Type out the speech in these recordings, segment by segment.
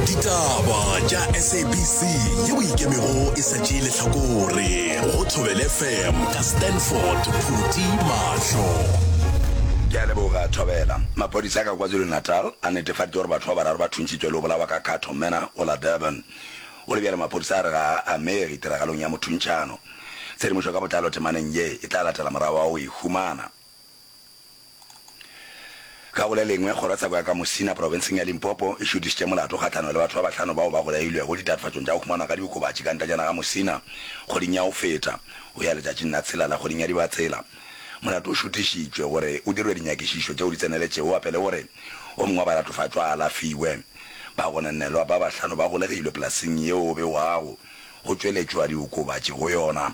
ditaba tša sabc ye o ikemego e sa tšee lehlakore go thobele fm ka stanford phuti mahlo ke a leboga thobela maphodisa ka kwazulu-natal a netefaditše gore batho ba bararo ba thuntšhitswe le go bolawa ka cattle manor go la durban go le bjalo maphodisa a re ga a amege tiragalong ya mothuntšhano tshedimošo ka botlalo temaneng ye e tla latela morago wa go e humana Ka go le lengwe, kgorotsheko ya ka Musina, profenseng ya Limpopo, e šutišitše molato kgahlanong le batho ba bahlano bao ba bolailwego ditatofatšong tša go humanwa ga diokobatši ka ntletšana ga Musina kgweding ya go feta, go ya letšatšing la tshelela kgweding ya Dibatsela. Molato o šutišitšwe gore o dirwe dinyakišišo tšeo di tseneletšego gape le gore o mongwe wa balatofatšwa a alafiwe. Bagononelwa ba bahlano ba golegilwe polasing yeo go begwago go tšweletšwa diokobatši go yona.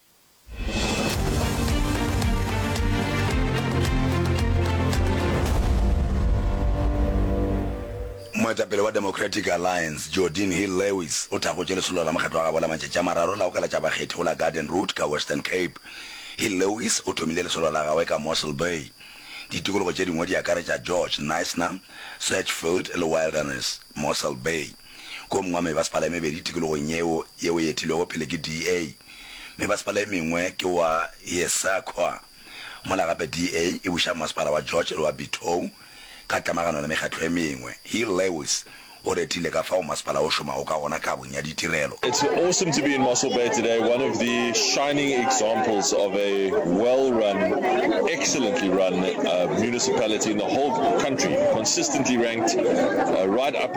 Moetapele wa Democratic Alliance, Geordin Hill-Lewis, o thakgotše lesolo la mokgatlo wa gabo la matšatši a mararo la go kalatša bakgethi go la Garden Route ka Western Cape. Hill-Lewis o thomile lesolo la gagwe ka Mossel Bay. Ditikologo tše dingwe di akaretša George, Knysna, Searchfield le Wilderness, Mossel Bay. Go mongwa mebasepala e mebedi tikologong yeo yeo e etilwego pele ke DA. Mebasepala e mengwe ke wa Yesakwa, mola gape DA e buša masepala wa George le wa Bithou ka tlamagano le mekgatlo e mengwe. Hill Lewis o retile ka fao masepala o šomago ka gona kabong ya ditirelo. It's awesome to be in Mossel Bay today, one of the shining examples of a well run, excellently run municipality in the whole country, consistently ranked right up.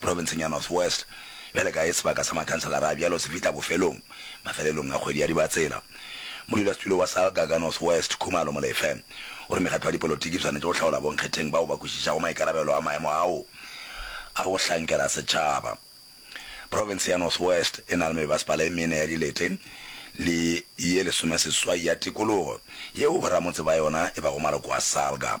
Profenseng ya North West, bjale ka ye sebaka sa makhanselara a bjalo se fihla bofelong, mafelelong a kgwedi ya Dibatsela, modulasetulo wa SALGA ka North West, Khumalo Molefe, o re mekgatlo ya dipolotiki e swanetše go hlaola bonkgetheng bao ba kwešišago maikarabelo a maemo ao a go hlankela setšhaba. Profense ya North West e na le mebasepala e mene ya dilete le ye lesomeseswai ya tikologo yeo boramotse ba yona e bago maloko a SALGA.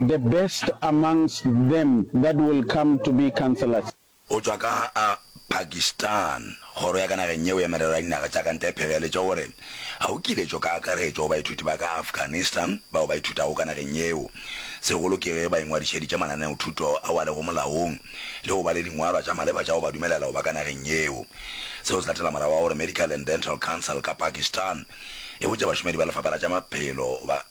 The best amongst them that will come to be councillors. Go tšwa ka ga Pakistan, Kgoro ya ka nageng yeo ya Merero ya Dinaga tša ka Ntle e pheleletše gore ga go kiletšo ka akaretšo go baithuti ba ka Afghanistan bao ba ithutago ka nageng yeo, segolo ke ge ba ingwadišeditše mananeothuto ao a lego molaong le go ba le dingwalwa tša maleba tša go ba dumelela go ba ka nageng yeo. Seo se latela morago ga gore Medical and Dental Council ka Pakistan e botše bašomedi ba Lefapha la tša Maphelo ba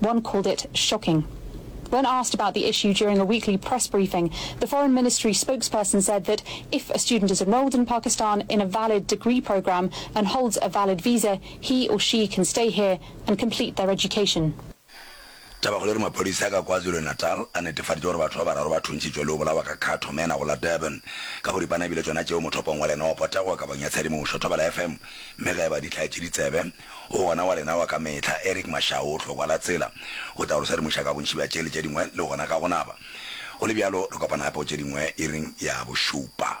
One called it shocking. When asked about the issue during a weekly press briefing, the Foreign Ministry spokesperson said that if a student is enrolled in Pakistan in a valid degree program and holds a valid visa, he or she can stay here and complete their education. Tabakgolo e re maphodisa ka KwaZulu-Natal a netefaditše gore batho ba bararo ba thuntšitšwe le go bolawa ka khatho mena go la Durban ka boripana ebile tšona tšeo mothopong wa lenopo tego kabong ya tshedimošo Thobela FM mme ge e ba dihlai tše ditsebe O gona wa lena wa ka mehla, Eric Mashau. Hlokwa la tsela go tla go re sedimoša ka bontši bja tše le tše dingwe le gona ka go naba. Go le bjalo, re kopana gape go tše dingwe iring ya bošupa.